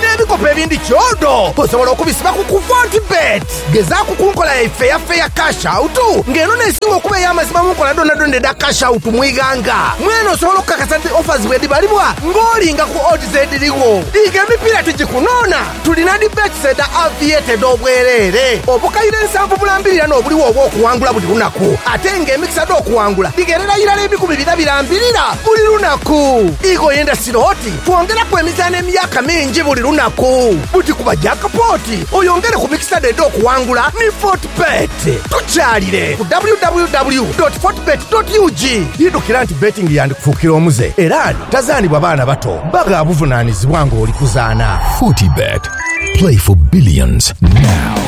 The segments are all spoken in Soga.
N'ebikopo ebindi kyodo osobola okubisiba ku Kuvontibet. Gezaaku ku nkola yaife eya Fair Cash Out nga eno n'esinga okuba ey'amazima mu nkola dhoonadhoona edha Cash Out mu ighanga. Mwene osobola okukakasa nti offers bwedhibalibwa ng'olinga ku odds edhirigho. Diiga emipiira tigikunoona, tulina dhi bets edha Aviator edh'obwereere. Obukaire nsanvu bulambirirana obuligho obw'okuwangula buli lunaku, ate nga emikisa dh'okuwangula dhigherera irala ebikumi bina birambirira buli lunaku. Ighoyo endasiro oti Twongeraku emizaano emyaka mingi buli lunaku. Buti kuba jaakpooti oyongere ku mikisa dho edh'okuwangula ni Fortebet. Tukyalire ku www dot fortebet dot ug. Idhukira nti betting yandikufuukira omuze era ani tazaanibwa baana bato bba gha buvunaanizibwa ng'oli kuzaana. Fortebet, play for billions now.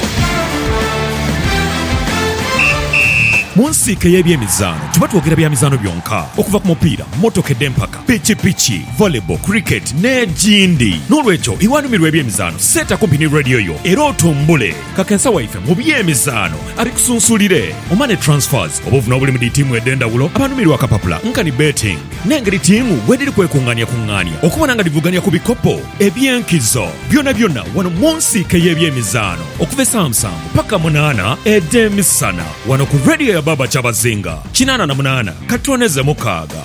Mu nsiike y'ebyemizaano tuba twogera bya mizaano byonka. Okuva ku mupiira, mmotoka edh'empaka, pikipiki, volleyball, cricket n'egindi. N'olwekyo iwanumirwa eby'emizaano seeta kumpi ni radio yo era otumbule. Kakensa waife mu by'emizaano abikusunsulire. Omane Transfers, obuvune obuli mu dhi tiimu edh'endhawulo, abanumirwa akapapula nkani betting n'engeri tiimu bwedhiri kwekungaaniakungaania okubona nga dhivugania ku bikopo eby'enkizo byonabyona wano mu nsiike y'eby'emizaano okuva esaawa musanvu paka munaana edh'emisana wano ku radio ya Baaba Kyabazinga kinaana na munaana katono eze'mukaaga.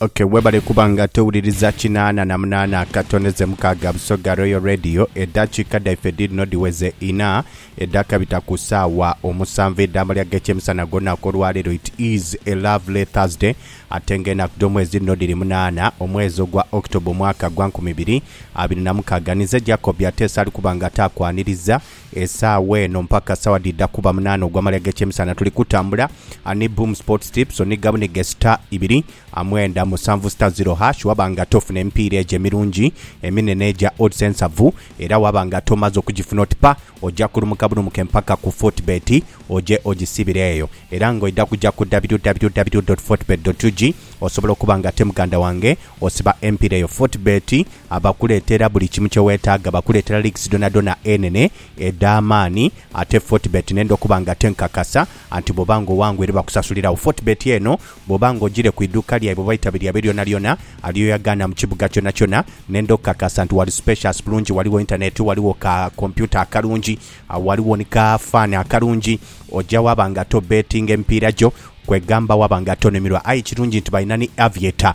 Ok, webale kuba nga towuliriza kinaana na munaana akato neze mukaaga Busoga Royal Radio. Eddakiika dhaife dhiidhino dhiweze inha edhakabita ku saawa omusanvu edh'amalya g'ekyemisana gw'olunaku olwaleero. It is a lovely Thursday ate nga enaku dh'omwezi dhino dhiri munaana omwezi ogwa October omwaka gwa nkumi ibiri abiri na mukaaga. Ninze Jacob Ateesa ali kuba nga taakwaniriza. Esaawa eno mpaka saawa dhidha kuba munaana ogwa male ag'ekyemisana tuli kutambula ni Boom Sports Tips oniga bunige star ibiri mwenda musanvu star zero hash waba nga tofuna emipiira egyo emirungi eminene egya odds ensavu era waba nga tomaze okugifuna oti pa oja kulumuka bulumuke mpaka ku Fortebet oje ogisibire eyo era nga oidha kuja ku www.fortebet.ug osobola okuba nga ate muganda wange osiba empiira eyo Fortebet Abakuleetera buli kimu kye weetaaga. Bakuleetera leagues dhonadhona enene, edh'amaani. Ate Fortebet nenda okuba nga te nkakasa anti bw'oba nga owangwa ere bakusasuliragho. Fortebet eno bw'oba nga ogiire ku iduuka lyaibwe oba eitabi lyaibwe lyonalyona alyoyagaana mu kibuga kyonakyona, nenda okukakasa nti ghali spacious bulungi, ghaligho internet, ghaligho ka computer akalungi, ghaligho ni ka fan akalungi. Oja waaba nga to bettinga emipiira gyo, kwegamba waaba nga tonumirwa. Aye ekirungi nti balina ni Aviator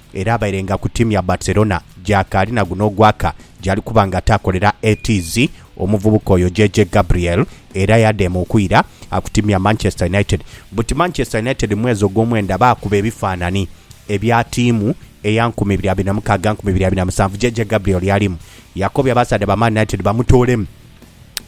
Era abairenga ku tiimu ya Barcelona gy'akaali na guno ogwaka gy'ali kuba nga ataakolera ATZ omuvubuka oyo JJ Gabriel era yadheema okwira ku tiimu ya Manchester United. Buti Manchester United mu mwezi ogwomwenda baakuba ebifaanani ebya tiimu eya nkumi ibiri abiri na mukaaga, nkumi ibiri abiri na musanvu JJ Gabriel yalimu. Yakobye abasaadha ba Man United bamutoolemu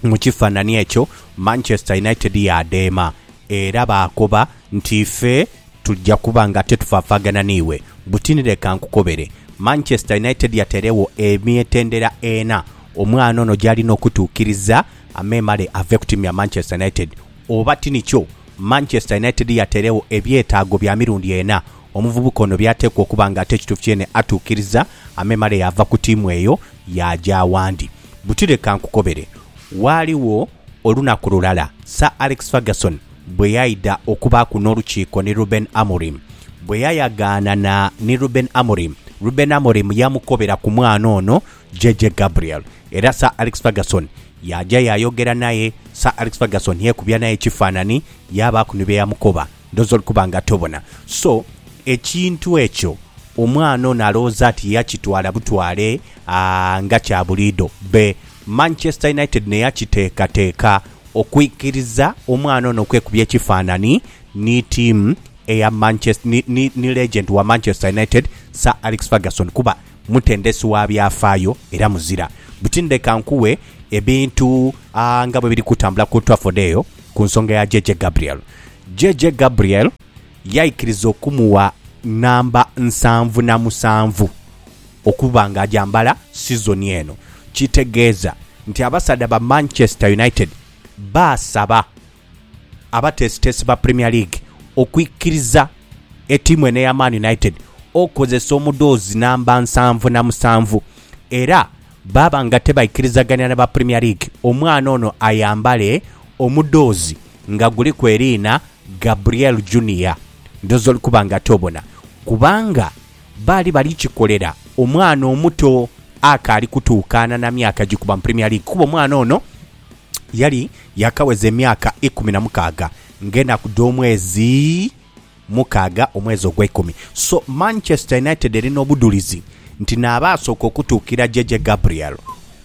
mu kifanani ekyo, Manchester United yaadheema era baakoba. Nti ife tuja kuba nga tetufaafaagana n'iwe. Buti ni leka nkukobere, Manchester United yateeregho emitendera ena omwana ono gy'alina okutuukiriza amemale ave ku tiimu ya Manchester United. Oba ti nikyo, Manchester United yateeregho ebyetaago bya mirundi ena omuvubuka ono by'ateekwa okuba nga ate ekituufu kyeene atuukiriza amemale yaava ku tiimu eyo yaaja awandi. Buti leka nkukobere, ghaligho olunaku lulala Sir Alex Ferguson Bwe yaidha okubaaku n'olukiiko ni Rubeni Amorim, bwe yayagaanana ni Rubeni Amorim, Rubeni Amorim yaamukobera ku mwana ono JJ Gabriel era Sir Alex Ferguson yaaja yaayogera naye. Sir Alex Ferguson yeekubya naye ekifaanani yaabaaku ni bye yamukoba ndhooza oli kuba nga tobona. So, ekintu ekyo omwana ono alowooza nti yakitwala butwale nga kya buliidho. Be Manchester United n'eyakiteekateeka Okwikiriza omwana ono okwekubya ekifanhanhi ni tiimu eya Manchester ni ni ni legend wa Manchester United Sir Alex Ferguson kuba mutendesi wa byafaayo era muzira buti ndeka nkuwe ebintu aa nga bwebiri kutambula ku Old Trafford eyo ku nsonga ya JJ Gabriel JJ Gabriel yaikiriza okumuwa namba nsanvu na musanvu Okuba nga agyambala sizoni eno kitegeeza nti abasaadha ba Manchester United baasaba abateesiteesi ba Premier League okwikiriza ettiimu eno eya Man United okozesa omudhoozi namba nsanvu na musanvu era baaba nga tebaikirizaganira na ba Premier League omwana ono ayambale omudhoozi nga guliku eriina Gabriel Junior. Ndhooza oli kuba ng'ate obona kubanga. Baali bali kikolera omwana omuto akaali kutuukaana na myaka gikuba mu Premier League kuba omwana ono yali yaakaweza emyaka ikumi na mukaaga ng'enaku dh'omwezi mukaaga omwezi ogweikumi. So Manchester United eri n'obudhulizi nti naaba asooka okutuukira JJ Gabriel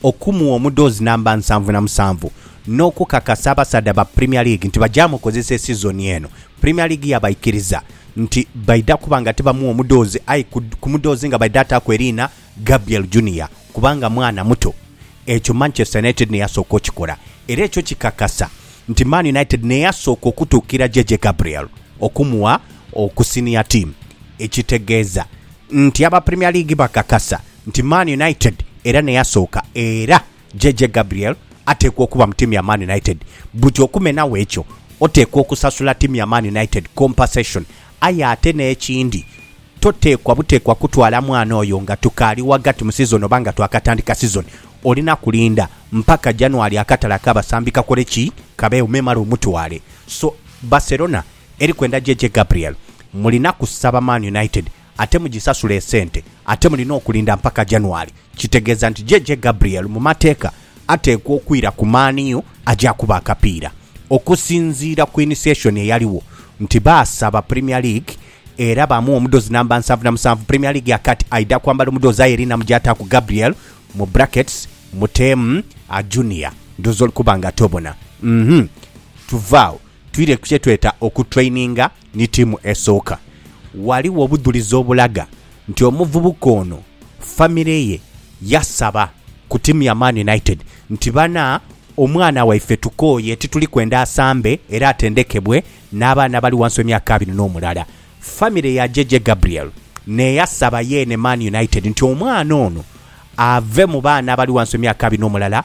okumuwa omudhoozi namba nsanvu na musanvu n'okukakasa abasaadha ba Premier League nti bagyamukozesa esizoni eno. Premier League yabaikiriza nti baidha kuba nga tibamugha mudhoozi aye ku mudhoozi nga baidha ataaku eriina Gabriel Junior kubanga mwana muto. Ekyo Manchester United n'eyasooka okikola era ekyo kikakasa nti Man United n'eyasooka okutuukira JJ Gabriel okumugha ku senior team ekitegeeza nti aba Premier League bakakasa nti Man United era n'eyasooka era JJ Gabriel ateekwa okuba mu tiimu ya Man United buti okumenagho ekyo oteekwa okusasula tiimu ya Man United compensation aye ate n'ekindi toteekwa buteekwa kutwala mwana oyo nga tukaali ghagati mu sizoni oba nga twakatandika sizoni olina kulinda mpaka January akatale ak'abasambi kakole ki? kabeegho memale omutwale so Barcelona eri kwenda JJ Gabriel mulina kusaba Man United ate mugisasule esente ate mulina okulinda mpaka January kitegeeza nti JJ Gabriel mu mateeka ateekwa okwira ku Man U aje akube akapiira. Okusinziira ku initiation eyaliwo nti baasaba Premier League era baamuwa omudoozi namba nsanvu na musanvu, Premier League ya kati aidha kwambala omudoozi aye erina mu gy'ataaku Gabriel, mu brackets muteemu a Junior ndhooza oli kuba nga tobona. Uhmm. Tuve agho twire ku kye tweta okutraininga. Ni tiimu esooka. Ghaligho obudhulizi obulaga nti omuvubuka ono famire ye yasaba ku tiimu ya Man United nti bana omwana waife tukooye tituli kwenda asambe era atendekebwe n'abaana abali ghansi w'emyaka abiri n'omulala. Famire ya Jeje Gabriel n'eyasaba yeene Man United nti omwana ono ave mu baana abali ghansi w'emyaka abiri n'omulala,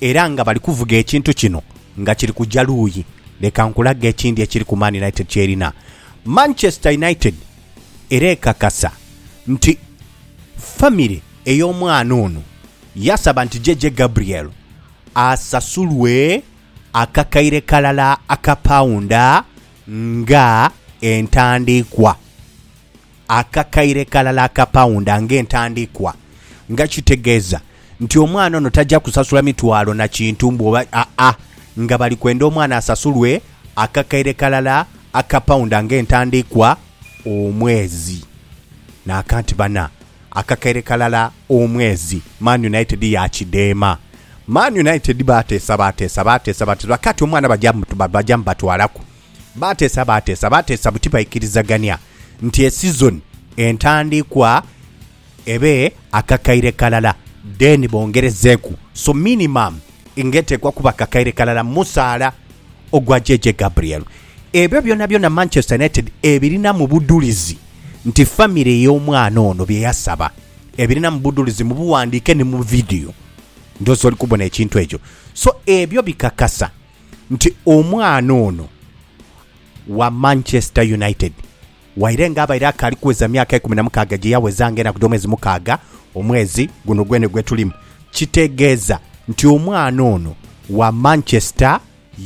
Era nga bali kuvuga ekintu kino nga kiri kuja luuyi, leka nkulage ekindi ekiriku Man United ky'erina. Manchester United era ekakasa nti famire ey'omwana ono yaasaba nti JJ Gabriel asasulwe akakaire kalala aka paunda nga entandiikwa. akakaire kalala aka paunda ng'entandikwa, nga kitegeeza nti omwana ono taja kusasula mitwalo na kintu mbu oba aa, nga bali kwenda omwana asasulwe akakaire kalala aka paunda ng'entandikwa omwezi. Naaka nti bana, akakaire kalala omwezi, Man United yaakidheema. Man United baateesa baateesa baateesa baateesa, bakaati omwana baja baja mubatwalaku. Baateesa baateesa baateesa buti baikirizagania nti esizoni entandikwa ebe akakaire kalala then bongerezeeku so minimum nga eteekwa kuba kakaire kalala musaala ogwa JJ Gabriel. Ebyo byonabyona Manchester United ebirinamu budhulizi nti famire y'omwana ono bye yasaba ebirinamu budhulizi mu buwandiike ni mu vidiyo. Ndhoozi oli kubona ekintu ekyo. So ebyo bikakasa. nti omwana ono wa Manchester United waire nga abaire akaali kuweza myaka ikumi na mukaaga gye yaweza nga enaku dh'omwezi mukaaga omwezi guno gwene gwe tulimu. Kitegeeza nti omwana ono wa Manchester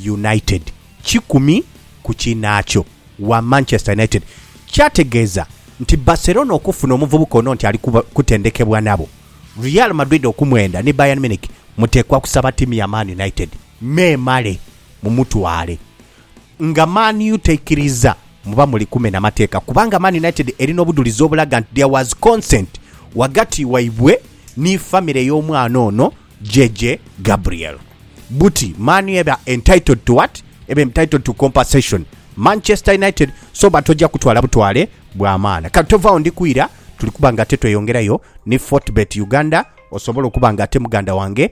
United kikumi ku kinaakyo, wa Manchester United. Kyategeeza nti Barcelona okufuna omuvubuka ono nti ali kutendekebwa nabo, Real Madrid okumwenda ni Bayern Munich muteekwa kusaba ttiimu ya Man United. Memale mumutwale nga Man U taikiriza muba muli kumena mateeka kubanga Man United eri n'obudhulizi obulaga nti there was consent ghagati waibwe ni famire y'omwana ono JJ Gabriel buti Man U eba entitled to what? Eba entitled to compensation Manchester United so but ojja kutwala butwale bw'amaana. Kale tovagho ndikuira tuli kuba nga ate tweyongerayo ni Fortbet Uganda osobole okuba nga ate muganda wange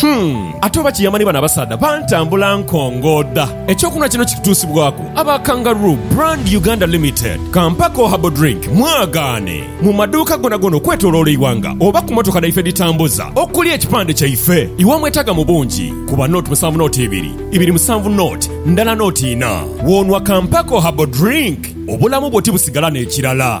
Humm! Ate oba kiyama ni bano abasaadha bantambula nkongooda. Eky'okunhwa kino kitutuusibwaku aba Kangaroo Brand Uganda Limited, ka mpako Herbal Drink mwagaane mu maduuka gonagona okwetoloola eighanga oba ku motoka dhaife edhitambuza okuli ekipande kyaife. Iwa mwetaaga mu bungi, kuba note musanvu note ibiri, ibiri musanvu note ndala note inha. W'onhwa ka mpako Herbal Drink, obulamu bwo tibusigala n'ekirala.